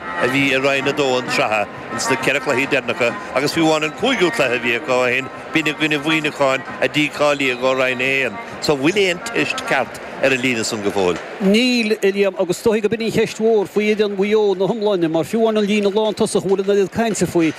a bhí i Roinn 2 an tsraithe ins na ceithre cluichí deireanacha agus fiú amháin an cúigiú cluiche a bhí acu ó shin, b'in i gcoinne Mhuíneacháin a dícháilíodh ó Roinn 1. So an bhfuil aon teist ceart ar an líne san go fóill? Níl, a Liam, agus is dóichí gurb in an cheist mhór faoi fhoireann Mhaigh Eo ina hiomláine, mar fiú amháin an líne lántosach a bhfuil an oiread cainte faoi,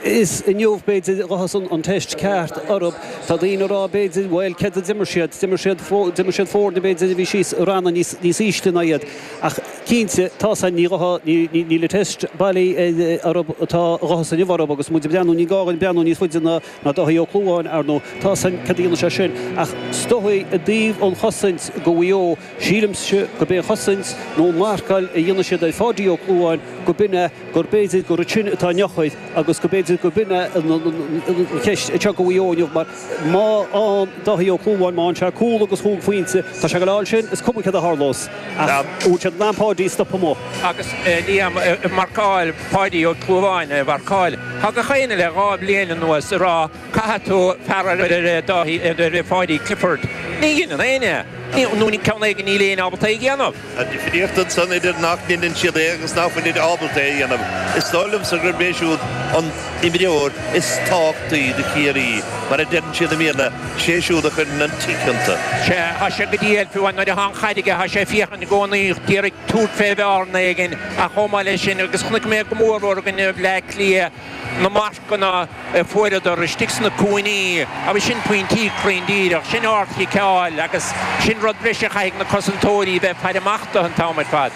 is inniu, b'fhéidir, a ghabhfas an teist ceart orthu. Tá daoine ag rá, b'fhéidir, bhuel, céard a d'imir siad? D'imir siad, d'imir siad foirne, b'fhéidir, a bhí síos i ranna níos, níos ísle ná iad ach, Cinnte, tá's ainn, ní ghabhfaidh, ní, ní, níl an teist bailithe orthu, atá a ghabhfas inniu orthu agus muid ag breathnú, ní gá dhuinn breathnú níos faide ná, ná Dáithí Ó Clúmháin, ar ndóigh, tá's ainn céard a dhéanfas sé sin. Ach is dóigh i dtaobh an chosaint do Mhaigh Eo, sílimse gurb é an chosaint nó an mharcáil a dhéanfaidh siad ar Pháidí Ó Clúmháin gurb in é, go mb'fhéidir gur ansin atá an eochair agus go mb'fhéidir gurb in í an cheist anseo do Mhaigh Eo inniu mar Má fhaghann Dáithí Ó Clúmháin, má fhaghann sé cúl agus chúig phointe, tá sé ag gabháil a fháil sin, is cuma céard a tharlós. Ach an bhfuil siad in ann Páidí a stopadh amuigh. Agus Liam ag marcáil, Páidí Ó Clúmháin a mharcáil, tá gach éinne le dhá bhliain anuas ag rá, caithfidh tú fear ar Pháidí Clifford. Ní dheineann éinne é, nó ceann éigin níl éinne ábalta é a dhéanamh. Tá difríocht ansan idir nach ndeineann siad é agus ná fuilid ábalta é a dhéanamh. Is dóigh liomsa gurb é siúd an t-imreoir is tábhachtaí do Chiarraí, mar a deireann siad i mBéarla, sé siúd a chuireann an tick iontu. Sea, tá sé go diail fiú nuair atá an chaid aige, tá sé ag féachaint i gcónaí díreach ag tabhairt fé bhearna éigin, ach chomh maith le sin, agus chonaic mé go mór mór i gcoinne Bleá Cliath na gona fuaireadar istigh sna cúinní, agus sin pointí cruinn díreach, sin ardchiceáil agus sin rud breise a chaithfidh na cosantóirí a bheith ag faire amach do an t-am ar fad.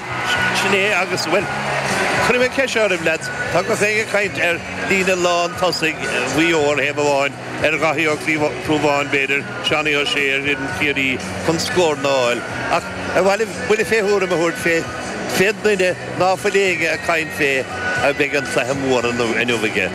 Sin é agus, bhuel, cuirfidh mé ceist oraibh lads, tá gach éinne ag caint ar líne lántosaigh Mhaigh Eo ar thaobh amháin, ar Dháithí Ó Clúmháin b'fhéidir, Seánie O'Shea ar fhoireann Chiarraí chun scóranna a fháil, ach ar mhaith libh buille fé thuairim a thabhairt fé Cén duine ná fuil éinne ag caint fé a mbeidh an cluiche mór inniu aige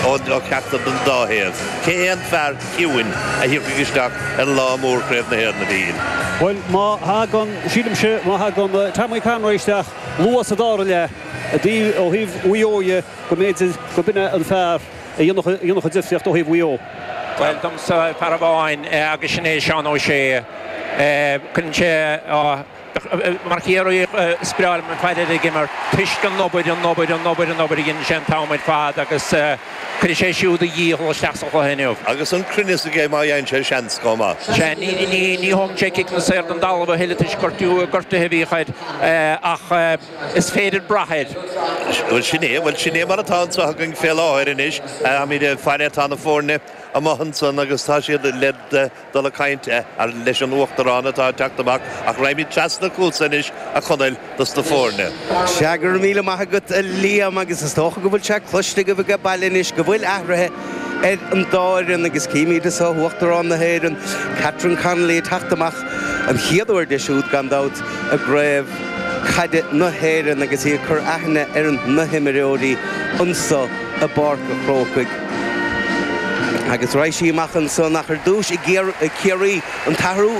ó cheachtar den dá thaobh? Cé hé an fear ciúin a thiocfaidh isteach ar lá mór Chraobh na hÉireann, a Mhíchíl? Bhuel, má thagann, sílimse, má thagann Tommy Conroy isteach luath sa dara leath i dtaobh, ó thaobh Mhaigh Eo dhe, go mb'fhéidir gurb in é an fear a dhéanfadh an difríocht ó thaobh Mhaigh Eo. Bhuel, domsa, fear amháin agus sin é Seán O'Shea. Cuireann sé. Mar Chiarraíoch is breá liom faire air ag imirt toisc an obair, an obair, an obair, an obair a dheineann sé an t-am ar fad agus cuirfidh sé siúd a dhícheall isteach sa chluiche inniu. Agus an cruinneas aige má fhaigheann sé seans chomh maith. Sea, ní thógann sé ciceanna saor den dtalamh a thuilleadh toisc gortuithe a bhíodh air ach is féidir brath air. Bhuel, sin é, bhuel, sin é mar atá anso againn fé láthair anois. Táimid ag faire, tá na foirne amuigh ansan agus tá siad le dul ag cainnt leis an Uachtarán atá ag teacht amach ach raghaimíd treasna chútsa anois a Chonaill dos na foirne. Sea, go raibh míle maith agat a Liam agus is dócha go bhfuil sé cloiste agaibh age baile anois go bhfuil athraithe ar an dá fhoireann agus címíd anso Uachtarán na hÉireann, Catherine Connolly ag teacht amach, an chéad uair di siúd gan dabht, i gCraobh Caide na hÉireann agus í ag cur aithne ar na himreoirí anso. i bPáirc a' Chrócaigh agus raghaidh sí amach ansan ach ar dtúis i gCiarraí. An t-athrú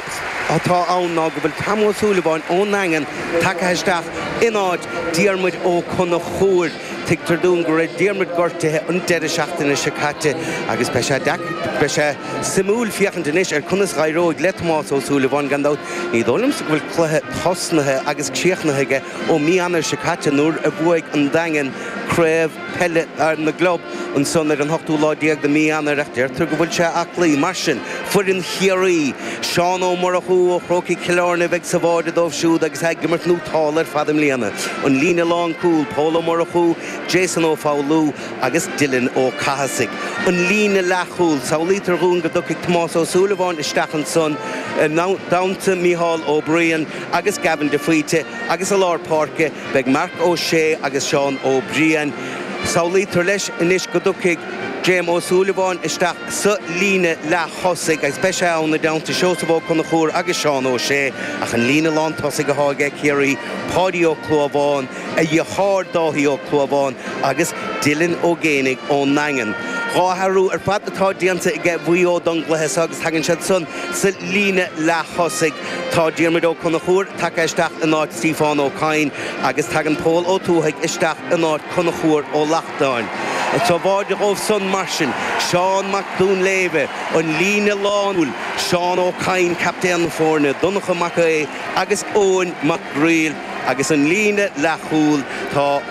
atá ann ná go bhfuil Tom Ó Súilleabháin ón nDaingean tagtha isteach in áit Diarmuid Ó Conchúir. Tuigtear dúinn go raibh Diarmuid gortaithe an deireadh seachtaine seo caite agus beidh sé suimiúil féachaint anois ar conas a éireoidh le Tomás Ó Súilleabháin. Gan dabht, ní dóigh liomsa go bhfuil cluiche tosnaithe agus críochnaithe aige. Ó mí Eanáir seo caite, nuair a bhuaigh an Daingean craobh peile na gclub, ansan ar an hochtú lá déag de mí Eanáir, ach deirtear go bhfuil sé aclaí. Mar sin, foireann Chiarraí, Seán Ó Murchú ó Chrócaigh Chill Áirne a bheidh sa bháide dóibh siúd agus é ag imirt nótálta ar fad i mbliana. An líne lánchúil, Pól Ó Murchú, Jason Ó Foghlú agus Dylan Ó Cathasaigh. An líne leathchúil, samhlaítear dhúinn go dtiocfaidh Tomás Ó Súilleabháin isteach ansan i dteannta Micheál Ó Braoin, agus Gavin de Faoite agus i lár páirce beidh Marc Ó Sé agus Seán Ó Briain. Samhlaítear leis anois go dtiocfaidh Graham Ó Súilleabháin isteach sa líne leath thosaigh agus beidh sé ann i dteannta Seosamh Ó Conchúir agus Seán Ó Sé ach an líne lán tosaigh atá age Ciarraí, Páidí Ó Clúmháin, a dheartháir Dáithí Ó Clúmháin agus Dylan Ó Géibheannaigh ón nDaingean. Dhá athrú ar fad atá déanta age Mhaigh Eo don gcluiche seo agus tagann siad san sa líne leath thosaigh. Tá Diarmuid Ó Conchúir tagtha isteach in áit Stíofán Ó Cadhain agus tagann Pól Ó Tuathaigh isteach in áit Conchúir Ó Lachtnáin. Sa bháide dhóibh san, mar sin, Seán Mac Dúnléibhe, an líne lánchúil, Seán Ó Cadhain, captaen na foirne, Donnchadh Mac Aodha agus Eoin Mac Gríl agus an líne leathchúil, tá,